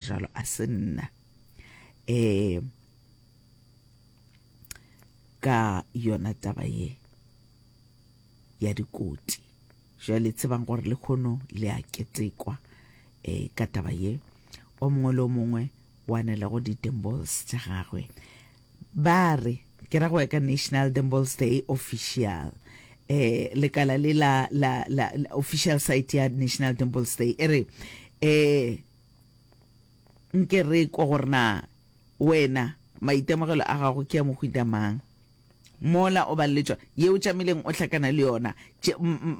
Jalo a se nna. E, ka yona taba ye ya dikoti. Jale tsebang gore le khono le a ketekwa e, ka taba ye. O mongwe le o mongwe o anela go di-dembols tša gagwe. Ba re, ke ra go ya ka National Dembols Day Official, e, lekala le la, la, la, la official site ya National Dembols Day e re, e, nke re ekwa gore na wena maitemogelo a gago ke a mohuta mang. Mola o ba le tšwa ye o tšamileng o hlakana le yona,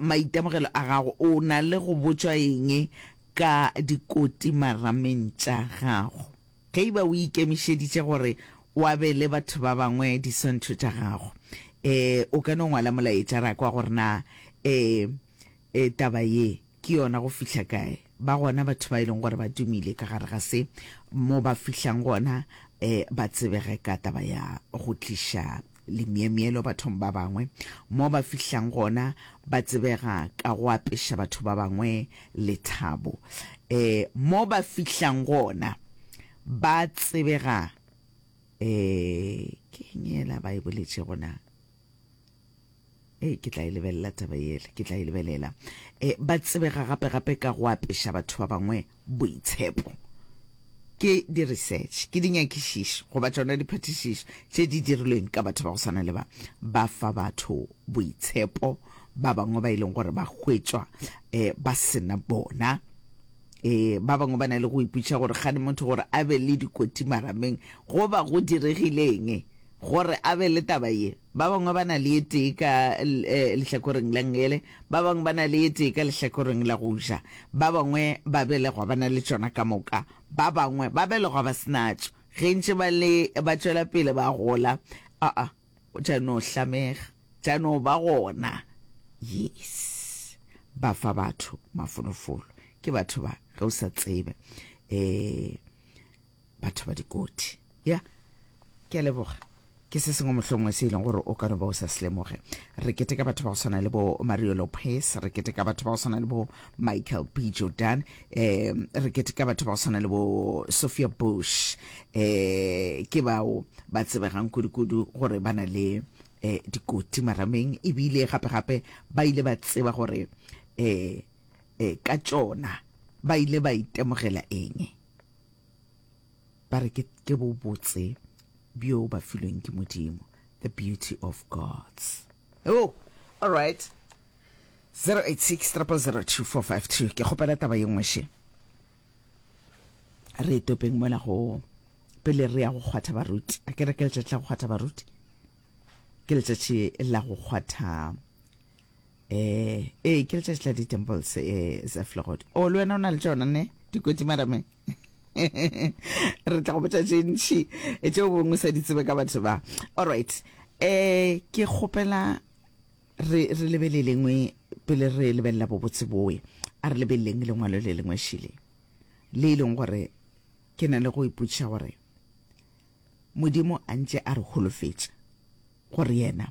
maitemogelo a gago, o na le go botšwa eng ka dikoti marameng tša gago? Ge e ba o ikemišeditše gore o abele batho ba bangwe diswantšho tša gago, o ka no ngwala molaetša ra kwa gore na taba ye Ke yona go fihla kae? Ba gona batho ba e leng gore ba dumile ka gare ga se, mo ba fihlang gona e ba tsebege ka taba ya go tliša lemyemyelo bathong ba bangwe, mo ba fihlang gona ba tsebega ka go apeša batho ba bangwe lethabo, e mo ba fihlang gona ba tsebega e ke eng yela ba e boletšego na? e ke tla e lebelela taba yele ke tla e lebelela e ba tsebega gape gape ka go apeša batho ba bangwe boitshepo ke di-research ke dinyakišišo goba tsona diphatišišo tše di dirilweng ka batho ba go swana le ba ba fa batho boitshepo ba bangwe ba e leng gore ba hwetšwa um ba sena bona e ba bangwe ba na le go iputša gore gane motho gore a be le dikoti marameng goba go diregileng Gore a be le taba ye, ba bangwe ba na le e tee ka lehlakoreng la ngele, ba bangwe ba na le e tee ka lehlakoreng la go ja, ba bangwe ba belegwa ba na le tšona ka moka, ba bangwe ba belegwa ba se natšo, ge ntše ba le ba tšwela pele ba gola, aa, go tša no hlamega, tša no ba gona. Yes. Ba fa batho mafolofolo. Ke batho ba, ge o sa tsebe. Ee. batho ba dikoti ya ke a leboga ke se sengwe mohlongwe se e leng gore o ka no ba o sa se lemoge re keteka batho ba go tshwana le bo mario lopez re keteka batho ba go tshwana le bo michael b jordan um re keteka batho ba go tshwana le bo sophia bush um ke bao ba tsebegang kudu-kudu gore ba na le um dikoti marameng ebile gape-gape ba ile ba tseba gore um ka tsona ba ile ba itemogela eng ba re ke bobotse bjo ba filweng ke modimo the beauty of gods oh all right 086 002452 ke kgopela taba ye nngwe še re e topeng mola go pele re ya go kgwatha baruti a ke re ke letšatši la go kgwatha baruti ke letšatši la go kgwatha eh ee ke letšatši la di-temples eh sa flogod o oh, le wena o na le tšona ne dikotsi madame re tla go botša tše ntšhi tšeo bongwe sa di tsebe ka batho ba allright um ke kgopela re re lebele lengwe pele re lebelela bobotse boe a re lebeleleng lengwalo le lengwe šile le e leng gore ke na le go ipotšiša gore modimo a ntše a re holofetša gore yena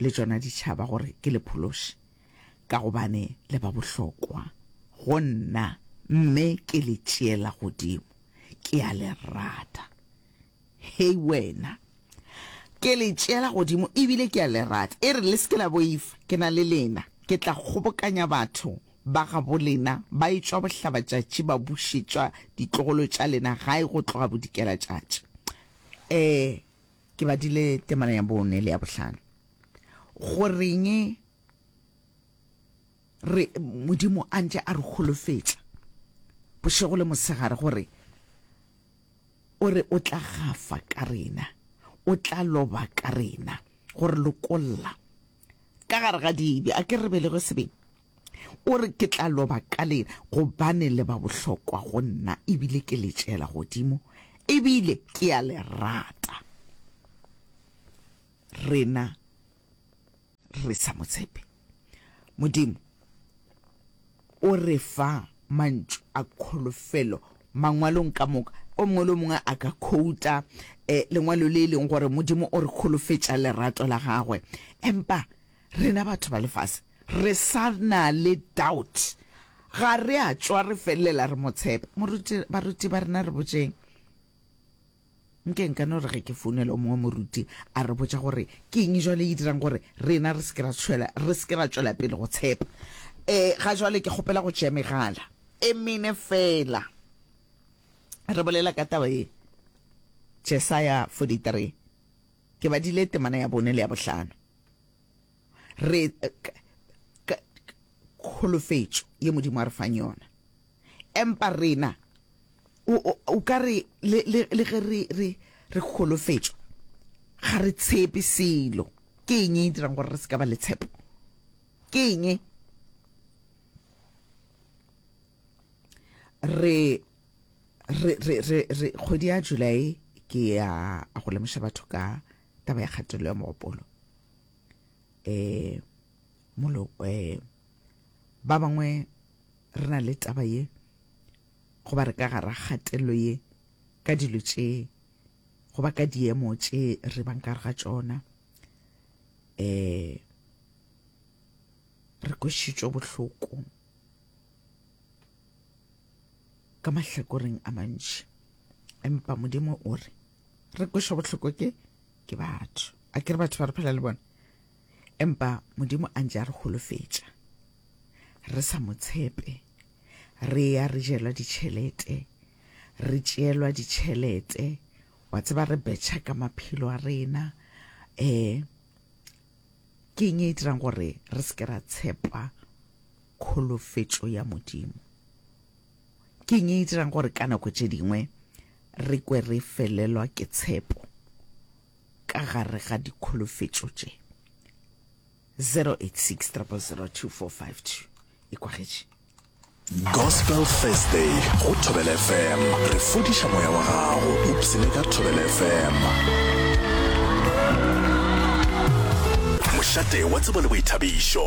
le tšona di tšhaba gore ke le phološe, ka gobane le ba bohlokwa go nna, mme ke le tšeela godimo, ke a le rata. Hei wena! Ke le tšeela godimo e bile ke a le rata. E re le se ke la boifa, ke na le lena. Ke tla kgobokanya batho ba gabo lena ba etšwa bohlabatšatši ba bušetšwa ditlogolo tša lena gae go tloga bodikelatšatši. Ee! Ke badile temana ya bone le ya bohlano. Goreng re, Modimo a ntše a re holofetša bošego le mosegare gore o re o tla gafa ka rena, o tla loba ka rena, gore lokolla ka gare ga dibe. A ke re belege sebeng? O re, Ke tla loba ka lena, gobane le ba bohlokwa go nna, ebile ke le tšeela godimo, ebile ke a le rata. Rena re sa mo tshepe, Modimo o re fa mantšu a kholofelo Mangwalong ka moka. O mongwe le o mongwe a ka khouta lengwalo le e leng gore Modimo o re kholofetša lerato la gagwe. Empa rena batho ba lefase Re sa na le doubt. Ga re a tšwa re felelela re mo tshepa. Moruti, baruti ba rena re botšeng. Nke nka no re ge ke founela o mongwe moruti a re botša gore ke eng jwale e dirang gore rena re se ke ra tšhwela, re se ke ra tšwela pele go tshepa. E, ga jwale ke kgopela go tšea megala e mene feela re bolela ka taba ye. Jesaya 43, Ke badile temana ya bone le ya bohlano. re kholofetšo ye modimo a re fang yona empa rena o ka re le ge re kholofetšo ga re tshepe selo ke eng e dirang gore re se ka ba le tshepo ke eng e? re re re re re kgwedi ya july ke ya go lemoša batho ka taba ya kgatelelo ya mogopolo eh molo eh ba bangwe re na le taba ye go ba re ka gara kgatelelo ye ka dilo tše go ba ka diemo tše re bang ka ga tšona eh re kwešitšwe bohloko ka mahlakoreng a mantši empa modimo o re re kwešwa bohloko ke ke batho a ke re batho ba re phela le bona empa modimo a ntse a re holofetša re sa mo tshepe re ya re jelwa ditšhelete re tšeelwa ditšhelete wa tseba re betšha ka maphelo a rena um ke eng e dirang gore re se ke ra tshepa kholofetšo ya modimo Ke eng e e dirang gore ka nako tše dingwe re kwe re felelwa ke tshepo ka gare ga dikholofetšo tše? 086 000 2452 e kwagetše. Gospel Thursday go Thobela FM re fodiša moya wa gago ipsene ka Thobela FM. Mošate wa tsebo le boithabišo.